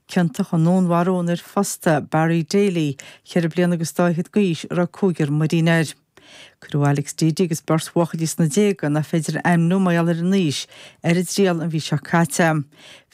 Ciontach i ndúnmharú an fhir phosta Barry Daly, ceithre bliana agus dá fhichead d'aois, a raibh cúigear muirín air. Cuireadh Alex Deady agus beirt bhuachaillí sna déaga, nach féidir a ainmniú mar gheall ar a n-aois, ar a dtriail an mhí seo caite.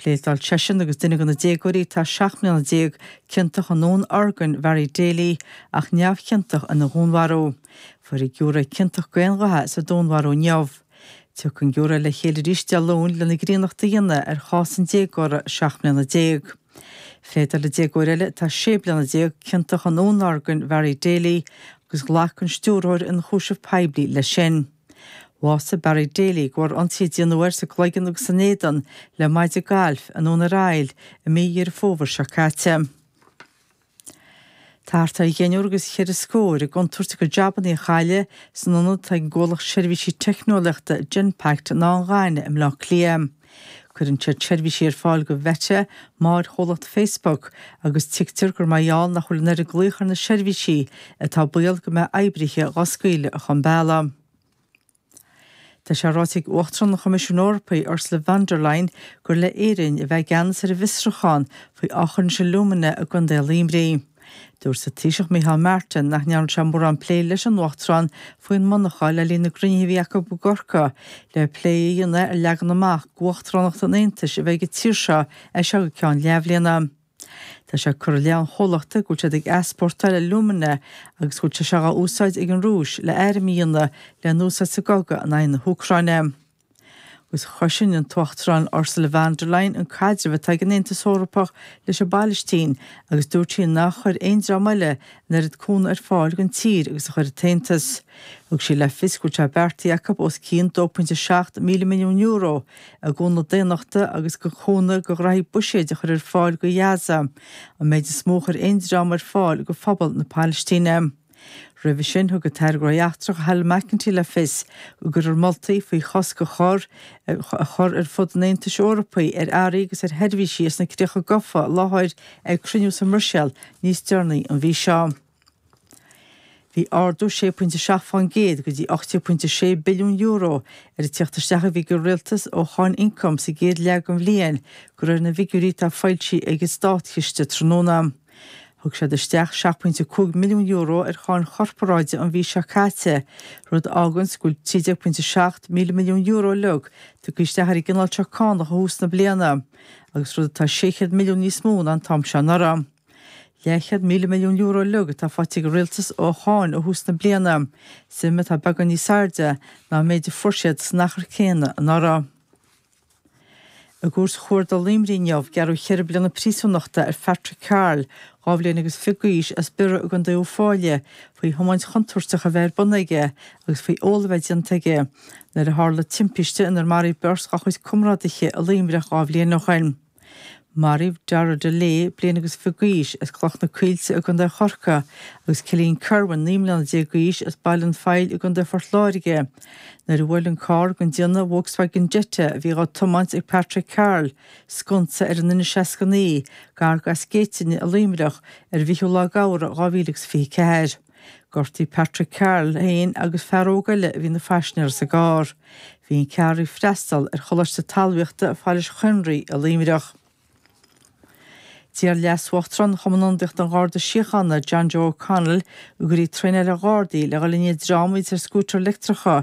Phléadáil seisean agus duine de na déagóirí atá seacht mbliana déag ciontach i ndún orgain Bharry Daly ach neamhchiontach ina dhúnmharú. Fuair an giúiré ciontach go aon ghuth sa dúnmharú inniu. Tiocfaidh an giúiré le chéile arís Dé Luain lena gcríonnacht a dhéanamh ar chás an déagóra seacht mbliana déag. Phléadáil an déagóir eile, atá sé bliana déag, ciontach i ndúnorgain Bharry Daly agus ghlac an Stiúrthóir Ionchúiseamh Poiblí leis sin. Bhásaigh Barry Daly de bharr ionsaí a déanadh air sa gcloigeann agus san éadan le maide gailf i nDún ar Aill i mí Dheireadh Fómhair seo caite. Thart ar dheichniúr agus ceithre scór i gcontúirt a gcuid jabanna a chailleadh san ionad atá ag an gcomhlacht seirbhísí teicneolaíochta Genpact in Áth an Ghainimh i mBleá Cliath. Cuireann siad seirbhísí ar fáil go Mheta, máthair-chomhlacht Facebook, agus tuigtear gur mar gheall nach bhfuil an oiread glaoch ar na seirbhísí atá baol go mbeadh oibrithe dhá scaoileadh chun bealaigh. Tá sé ráite ag Uachtarán an Choimisiúin Eorpaigh, Ursula von der Leyen, gur le Éirinn a bheith i gceannas ar an bhfiosrúchán faoi Aughinish Alumina i gContae Luimnigh. Dúirt an Taoiseach Micheál Martin nach ndearna sé mórán plé leis an Uachtarán faoin monarcha le linn na gcruinnithe a bhí acu i gCorcaigh le plé a dhéanamh ar leagan amach uachtaránacht an Aontais a bheith ag an tír seo as seo go ceann leathbhliana. Tá sé curtha i leith an chomhlachta go bhfuil siad ag easpórtáil alumina agus go bhfuil sé seo á úsáid ag an Rúis le airm a dhéanamh le n-úsáid sa gcogadh in aghaidh na hÚcráine. Agus chosain an tUachtarán Ursula Von der Leyen an caidreamh atá ag an Aontas Eorpach leis an bPailistín agus dúirt sí nár chuir aon dream eile an oiread cúnamh ar fáil don tír agus a chuir an tAontas. Thug sí le fios go bhfuil sé beartaithe acu os cionn €2.7 míle milliún I gcúnamh daonnachta agus go chúnamh go ghnóthaí buiséid a chur ar fáil go Ghaza, an méid is mó a chuir aon dream ar fáil go phobal na Pailistíne. Roimhe sin thug an tAire Gnóthaí Eachtracha Helen McEntee le fios go gcuirfear moltaí faoi chosc a chur a chur ar fud an Aontais Eorpaigh ar earraí agus ar sheirbhísí as na críocha gofa i láthair ag cruinniú sa mBruiséal níos deireanaí an mhí seo. Bhí ardú 6.7% go dtí €80.6 billiún ar an tíocht isteach a bhí ag an rialtas ó cháin ioncaim sa gcéad leath den bhliain, de réir na bhfigiúirí atá foilsithe ag an státchiste tráthnóna. Thug siad isteach €7.5 milliún ar cháin chorparáide an mhí seo caite, rud a fháganns go bhfuil €13.7 míle milliún uilig tagtha isteach ar an gcineál seo cánach ó thús na bliana, agus rud atá 600 milliún níos mó ná an t-am seo anuraidh. €50,000 milliún uilig atá faighte ag an rialtas ó cháin ó thús na bliana, suim atá beagán níos airde ná an méid a fuair siad san achar céanna anuraidh. I gcúirt Chuarda Luimnigh inniu, gearradh ceithre bliana príosúnachta ar Phatrick Carroll, dhá bhliain agus fiche d'aois, as Biorra i gContae Uíbh Fhailí faoi thiomáint chontúirteach a bheith ar bun aige agus faoi ól a bheith déanta aige nuair a tharla timpiste inar maraíodh beirt dá chuid comrádaithe i Luimneach dhá bhliain ó shin. Maraíodh Darragh Dullea bliain agus fiche d'aois as Cloch na Coillte i gContae Chorcaí agus Cillian Kirwan naoi mbliana déag d'aois as Baile an Phoill i gContae Phort Láirge nuair a bhuail an carr den déanamh Volkswagen Jetta a bhí dhá tiomáint ag Patrick Carroll sconsa ar an N69 gar go Eas Géitine i Luimneach ar an bhfichiú lá d'Fheabhra 2024. Gortaíodh Patrick Carroll féin agus fear óg eile a bhí ina phaisnéir sa gcarr. Bhí an ceathrar ag freastal ar Choláiste Talmhaíochta Phailís Chaonraí i Luimneach. D'iarr Leas-Uachtarán Chumann Ionadaíochta an Gharda Síochána, John Joe O'Connell, go gcuirfí traenáil ar Ghardaí le dhul i ndiaidh dream a bhí ar scútair leictreacha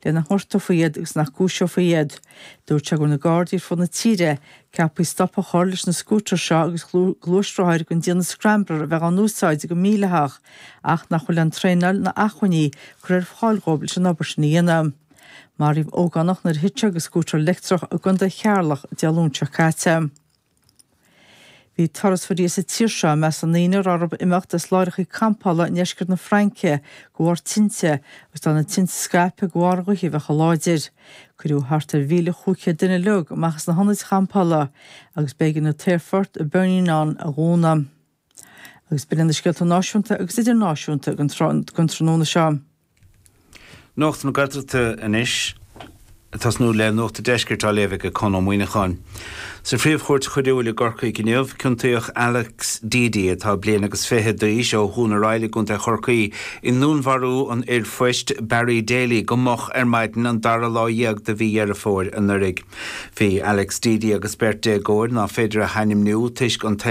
le nach ngortófaí iad agus nach gcúiseofaí iad. Dúirt sé go raibh na Gardaí ar fud na tíre ceaptha stop a chur leis na scútair seo agus gluaisrothair den déanamh scrambler a bheith á n-úsáid go mídhleathach ach nach bhfuil an traenáil ná acmhainní curtha ar fáil dhóibh leis an obair sin a dhéanamh. Maraíodh ógánach nuair a thit sé de scútar leictreach i gContae Cheatharlach Dé Luain seo caite. Bhí turasóirí as an tír seo i measc na ndaoine a raibh orthu imeacht as láithreachaí campála i ndeisceart na Fraince go bharr tinte, agus tá na tinte ag scaipeadh go bharr an ghaoth a bheith chomh láidir. Cuireadh thart ar mhíle chúig chéad duine uilig amach as na hionaid champála agus b'éigean an t-aerfort i bPerpignan a dhúnadh. Agus b'in na scéalta náisiúnta agus idirnáisiúnta don tráthnóna seo. Nuacht na Gaeltachta anois. Ag tosnú le nuacht an deiscirt á léamh ag Conn Ó Muíneacháin. Sa Phríomh-Chúirt Choiriúil i gCorcaigh inniu, ciontaíodh Alex Deady, atá bliain agus fiche d'aois, ó Dhún ar Aill i gContae Chorcaí, i ndúnmharú an fhir phoist Barry Daly go moch ar maidin an dara lá dhéag de mhí Dheireadh Fómhair anuraidh. Bhí Alex Deady agus beirt déagóir, nach féidir a hainmniú toisc an